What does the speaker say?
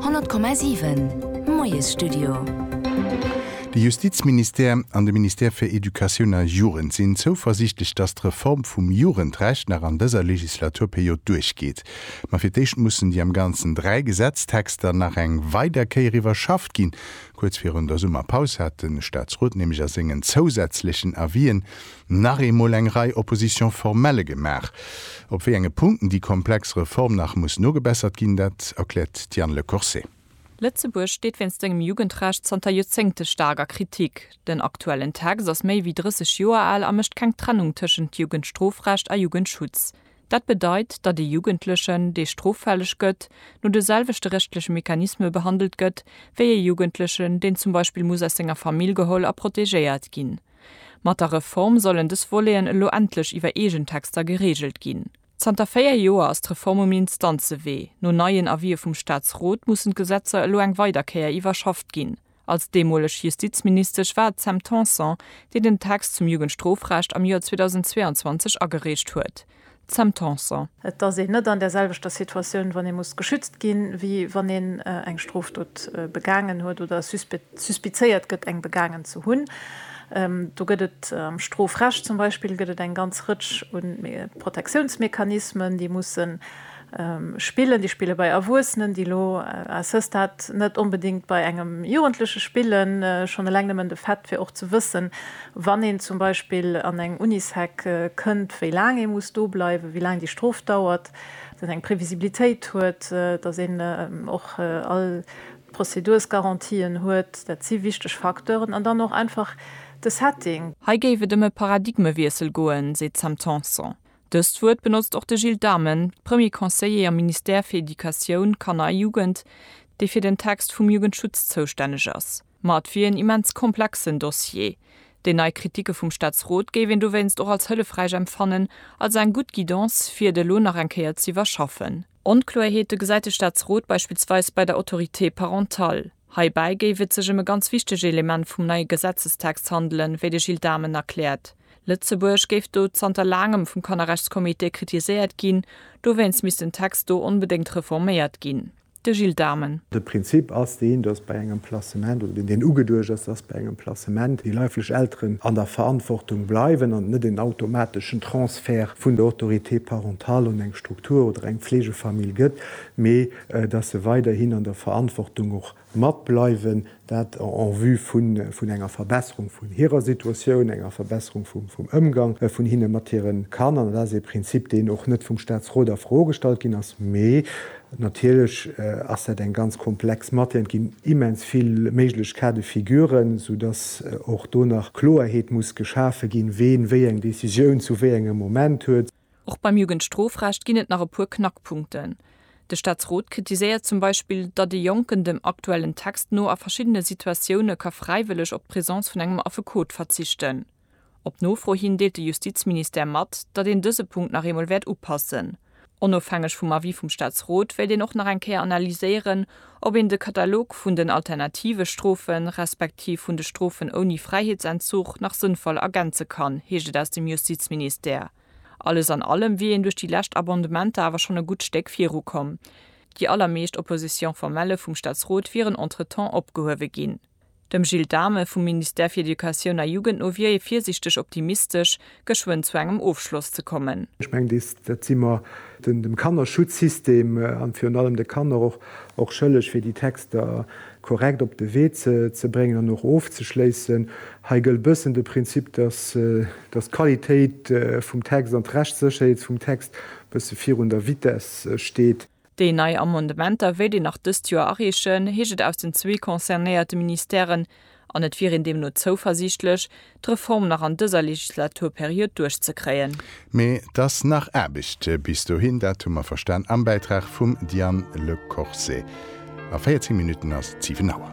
100,7 Moiesstudio. De Justizministère an de Ministère fir Educatioun a Jugend sinn zouversiichtlech, datt d'Reform vum Jugendrecht nach an dëser Legislaturperiod duerchgeet. Ma fir d'éischt mussen déi am Ganzen dräi Gesetztexter nach eng weider Kéier iwwerschafft ginn. Kuerz virun der Summerpaus hat de Staatsrot nämlech a sengen zousätzlechen Avisen, nach eemol eng Rei Oppositions formelles gemaach. Op wéi enge Punkten déi komplex Reform nach muss nogebessert ginn, dat erkläert d'Diane Le Corset. Lëtzebuerg steet wéinst sengem Jugendrecht zanter Joerzéngte staark a Kritik. Den aktuellen Text ass méi wéi 30 Joer al a mécht keng Trennung tëschent Jugendstrofrecht a Jugendschutz. Dat bedeit, datt ee Jugendlechen, dee stroffälleg gëtt, no de selwechte rechtleche Mechanisme behandelt gëtt, wéi ee Jugendlechen, deen zum Beispill muss aus senger Famill geholl a protegéiert ginn. Mat der Reform sollen dës Voleten elo endlech iwwer eegen Texter gereegelt ginn. Zanter véier Joer ass d'Reform um Instanzewee. No neien Avisë vum Staatsrot mussen d'Gesetzer elo eng weider Kéier iwwerschafft ginn. Als deemoleg Justizministesch war et d'Sam Tanson, déi den Text zum Jugendstrofrecht am Joer 2022 agereecht huet. Sam Tanson. Et ass een net an där selwechter Situatioun, wann ee muss geschützt ginn, wéi wann een eng Strofdot begaangen huet oder suspizéiert gëtt, eng begaangen ze hunn. Do gëtt et am Strofrecht zum Beispill gëtt et eng ganz Rëtsch u Protectiounsmechanismen, déi mussen, Spillen, déi spille bei Erwuessenen, déi elo à ce stade net onbedéngt bei engem Jugendleche spillen. Schonn eleng nëmmen de Fait, fir och ze wëssen, wann een zum Beispill an eng Unisec kënnt, wéi laang ee muss do bleiwen, wéi laang déi Strof dauert, datt een eng Previsibilitéit huet, datt een och all d'Prozedursgarantien huet, dat si wichteg Facteuren. An dann och einfach de Setting. Hei géif et ëm e Paradigmewiessel goen, seet d'Sam Tanson. Dëst Wuert benotzt och de Gilles Dhamen, Premier Conseiller am Ministère fir Educatioun, Kanner a Jugend, dee fir den Text vum Jugendschutz zoustänneg ass. Ma et wier en immens komplexen Dossier. Déi nei Kritike vum Staatsrot géif een dowéinst och als hëllefräich empfannen, als eng gutt Guidance fir et elo nach eng Kéier z'iwwerschaffen. Onkloerheete gesäit de Staatsrot beispillsweis bei der Autorité parentale. Heibäi géif et sech ëm e ganz wichtege Element vum neie Gesetzestext handelen, wéi de Gilles Dhamen erkläert. Lëtzebuerg géif do zanter laangem vum Kannerrechtscomité kritiséiert ginn, dowéinst misst den Text do onbedéngt reforméiert ginn. De Gilles Dhamen. De Prinzip ass deen, datt bei engem Placement, oder deen deen ugeduecht ass, datt bei engem Placement déi leiflech Elteren an der Verantwortung bleiwen an et net en automateschen Transfert vun der Autorité parentale un eng. Struktur oder eng Pflegefamill gëtt, mee datt se weiderhin an der Verantwortung och matbleiwen, dat en vue vun enger Verbesserung vun hirer Situatioun, enger Verbesserung vum Ëmgang vun hinne mat hire Kanner. Dat ass ee Prinzip, deen och net vum Statsrot a Fro gestallt ginn ass, mee natierlech ass dat eng ganz komplex Matière. Et ginn immens vill méiglech Cas de figure, soudass och do nach Kloerheet muss geschafe ginn, ween wéi eng Décisioun zu wéi engem Moment huet. Och beim Jugendstrofrecht ginn et nach e puer Knackpunkten. De Staatsrot kritiséiert zum Beispill, datt ee Jonken dem aktuellen Text no a verschiddene Situatioune ka fräiwëlleg op d'Presence vun engem Affekot verzichten. Op Nofro hin deelt de Justizministère mat, datt een dëse Punkt nach eemol wäert upassen. Onofhängeg vum Avis vum Staatsrot wéilt een och nach eng Kéier analyséieren, Ob een de Katalog vun den alternative Strofen, respektiv vun de Strofen ouni Fräiheetsentzug nach sënnvoll ergänze kann, heescht et aus dem Justizministère. Alles an allem wier een duerch déi lescht Abondementer awer schonn e gutt Stéck viru komm. Déi allermeescht Opposition formelle vum Staatsrot wieren entretemps opgehuewe ginn. Dem Gilles Dhamen vum Ministère fir Educatioun a Jugend no wier ee virsiichteg optimistesch, geschwënn zu engem Ofschloss ze kommen. Ech mengen, dees, dat si mer dem Kannerschutzsystem an virun allem de Kanner och och schëlleg, fir déi Texter korrekt op de Wee ze ze bréngen an och ofzeschléissen. Hei gëllt e bëssen de Prinzip, dass dass d'Qualitéit vum Text an d'Rechtssécherheet vum Text e bësse virun der Vitesse steet. Déi nei Amendementer wéilt een nach dëst Joer areechen, heescht et aus den zwee concernéierte Ministèren, an et wier een deemno zouversiichtlech, d'Reform nach an dëser Legislaturperiod duerchzekréien. Mee et ass nach Aarbecht bis dohin, dat hu mer verstan am Bäitrag vum Diane Le Corset. A 14 Minutten ass et 7 Auer.